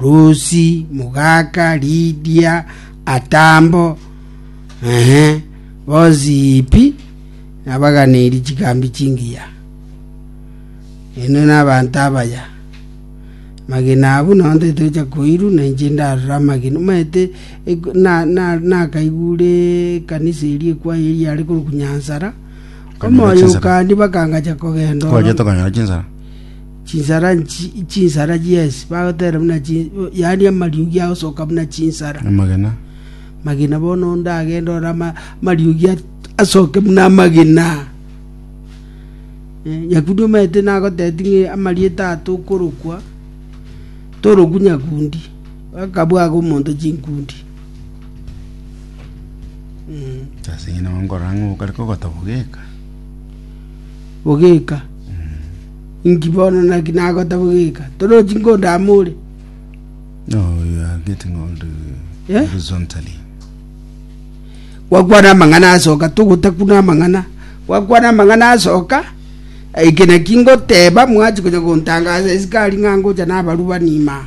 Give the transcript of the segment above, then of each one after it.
Rusi, Mugaka, Lidia, Atambo, bonsi Hipi, nabaganeiri chigambi chingiya. Inwe nabanto abaya, magena abwo naonte tocha koirwa, na inche ndarora amagena. Omanyete nakaigure ekanisa eria ekwaya eria yare korokwa Nyansara, omoyo okandi bakangacha kogenda ororo. Chinsara nchinsara chi'ense, bagotera buna chin-, yaani amariogi agosoka buna chinsara. Amagena. Magina bono onde agende ore ama- amariogi at- asoke buna amagina. Eh, Nyakundi omaete nagoteti ng'e amarieta aya tokorokwa, toroku Nyakundi, akabwaga omonto chinkundi. Mm. Sasa inye nabo nkorora ng'a okare kogotoboga eka. Bogeka. Inki bono? Naki nagota bogika? Torochi nkodama ore? Gwakwana amang'ana asoka, togotakuna amang'ana. Gwakwana amang'ana asoka, eke naki ngoteba, mwachi konya gontangaza esikari ng'a ngocha nabarubani maa.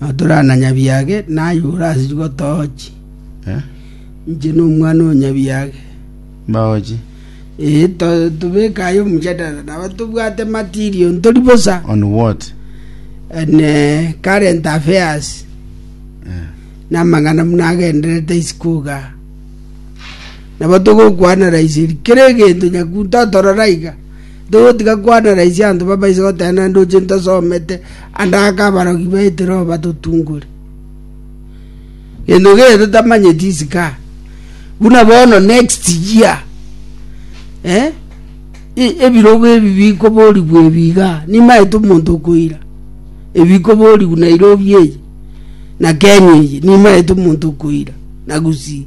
Na torana nyabiage naye ore ase chigotoochi, inche nomwana o nyabiage. Mbaochi. Ee, to- tobeke aye omojadala, nabo tobwate material, ntori bosa. On what? And eh, current affairs, Eh. namang'ana buna agenderete isiko iga. Nabo togokwana raiseri, kera egento nyakunto atorora iga. Togotiga kwanera ise anto babaise goteena naende oche ntosomete ande ake abarogi baite roho batotungore. Gento kere totamanyeti isika. Buna bono next year. Eh? E- Ebirogo ebi bikoborigwa ebiga. Nimaete omonto okoira. Ebikoborigwa Nairobi eye. Na Kenya eye. Nimaete omonto okoira. Na Gusii.